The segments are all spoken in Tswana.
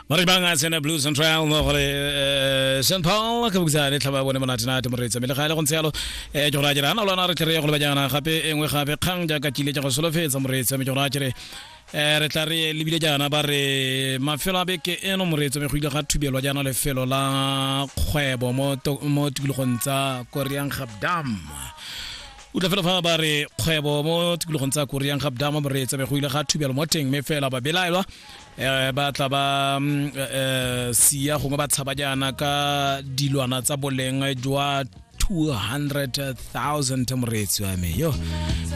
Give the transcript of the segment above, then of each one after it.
mara banga tsena blues and trial mo gore eh, Sean Paul ka bukisa le tlhaba bone monate nate moreetsa mele gale go ntse yalo eh ke gore a jira ana lona re tle re go lebajana gape e nngwe gape kgang jaaka kile ja go solofetsa moreetsa me ke gore a jere eh re tla re lebile jaana ba re mafelo a beke eno moreetsa me go ile ga thubelwa jaana lefelo la kgwebo mo to- mo tikologong tsa Korean Gap Dam o tla fela fa ba re kgwebo mo tikologong tsa koreang ga bdama mo re tsebegogile ga thubelo mo teng mme fela ba belaelwa um ba tla ba um sia gongwe ba tshaba jaana ka dilwana tsa boleng jwa 200,000 moreetsi wa me yo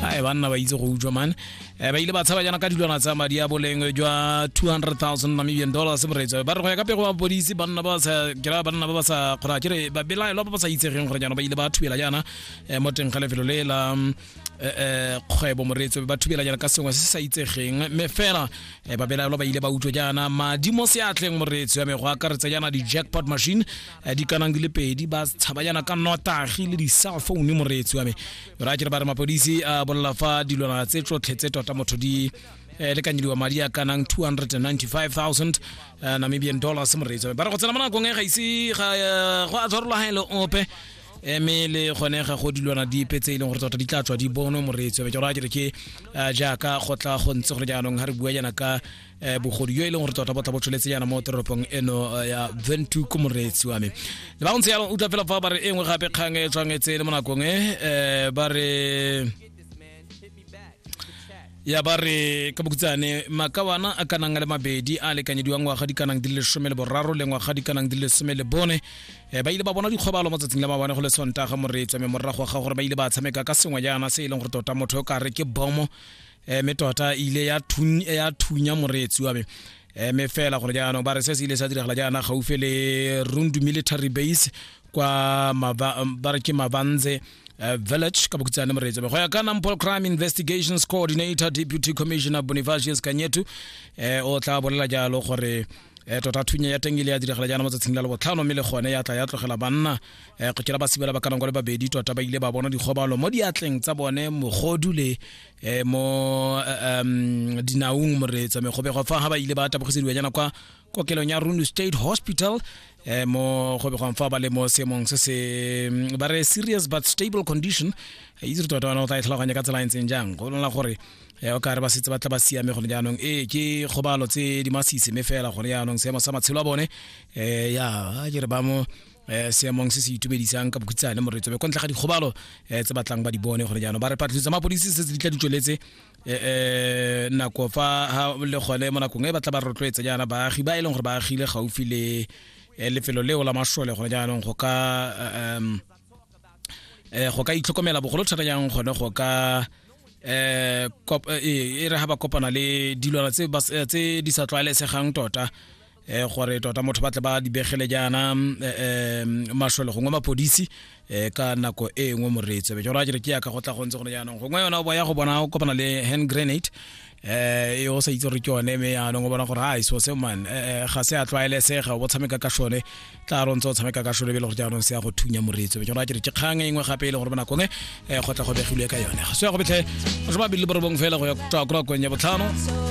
ae banna ba itse go utswa mane um ba ile ba tshaba jaana ka dilwana tsa madi a boleng jwa 200,000 namibian dollars moreetsi wa me ba re go ya ka pego ba bodisi banna ba sa kera banna ba ba sa kgona kere ba belaelwa ba ba sa itsegeng gore jaana ba ile ba thubela jaana eh, mo teng ga lefelo le la mm, eh, eh, kgwebo moreetso ba thubelanyana ka sengwe se sa itsegeng mme fela eh, babelaelo ba ile ba utlwa jaana madi mo seatleng moreetso ya me go akaretsa jaana di-jackpot machine eh, di kanang di le pedi ba tshaba jaana ka notagi le di-cell phone moreetso ya me ra kere ba re mapodisi a bolela fa dilwana tse tsotlhe tse tota motho di eh, lekanyediwa madi a kanang 295,000 eh, namibian dollars moreetso ba re go tsena mo nakong e ga ise ga eh, go a tshwarologelo ope eme le gone ga go dilwana dipe tse e leng gore tota di tla tswa di bonwe moreetsi be ke gore a kere ke eh, jaaka go tla go ntse gore jaanong ga re bua jaana ka eh, bogodu yo e leng gore tota bo tla bo tsholetse jaana mo toropong eno eh, ya ventu ko moreetsi wa me le ba ntse yalo utlwa fela fa ba re e nngwe gape kgang e tshwanetse le mo nakong e ba re ya ba re ka bokutsane makawana a kanang a le mabedi a lekanyediwa ngwaga di kanang di le lesome le boraro le ngwaga di kanang di le lesome le bone um ba ile ba bona dikgobalo mo tsatsing la mabane go le sontaga moretswa mme morago ga gore ba ile ba tshameka ka sengwe jaana se e leng gore tota motho yo ka re ke bomo um eh, mme tota e ile ya thunya moreetsi wa me mme eh, fela gore jaanong ba re se se ile sa diragala jaana gaufi le rundu military base kwa Mava- ba re ke mavanze eh, village ka bokutsane moretsebe go ya ka nampol crime investigations coordinator deputy commissioner bonifacius kanyetu eh, o tla bolela jalo gore eh, tota thunya ya teng ile ya diragala jaana matsatsing la lebotlhano mme le gone ya tla ya tlogela banna eh, go kira ba sebela ba kanang kwa le babedi tota ba ile ba bona dikgobalo mo diatleng tsa bone mogodu le eh, mo eh, em, dinaung moretsa megobe go fa ga ba ile ba tabogisediwa jaana kwa kokelong ya rune state hospital eh, mo go begwang fa ba le mo seemong se se mm, ba re serious but stable condition Eh, itse re tota ona o tla e tlhaloganya ka tsela e ntseng jang go lona gore eh, o ka re ba setse ba tla ba siame gone jaanong ee ke kgobalo tse di masisi mme fela gone jaanong seemo sa matshelo a bone um ya a ke re ba mo eh seemong se se itumedisang ka bokhutsane moretso be kwa ntle ga dikgobalo eh, tse batlang ba di bone gore jaanong ba re patlisiso tsa mapodisi se se di tla di tsweletse um eh, eh, nako fa le gone mo nakong e batla ba rotloetsa jaana baagi ba e leng gore ba agile gaufi le eh, lefelo leo la masole gone jaanong go ka um go ka itlhokomela bogolo thata jang gone go ka um e re ga ba kopana le dilwana tse di sa tlwaelesegang tota eh gore tota motho ba tle ba dibegele jaana eh mashole gongwe mapodisi eh ka nako e nngwe moreetso be jora jere ke ya ka go tla go ntse go ne jaanong gongwe yona o boya go bona o kopana le hand grenade eh e o sa itse gore ke yone me jaanong o bona gore ha iso se man eh ga se a tlwaelesega o tshameka ka shone tla ro ntse o tshameka ka shone be le gore jaanong se ya go thunya moreetso be jora jere ke kgang e nngwe gape e le gore bona kongwe eh go tla go begilwe ka yone so ya go betlhe go ba bile borobong fela go ya kwa kwa ya botlhano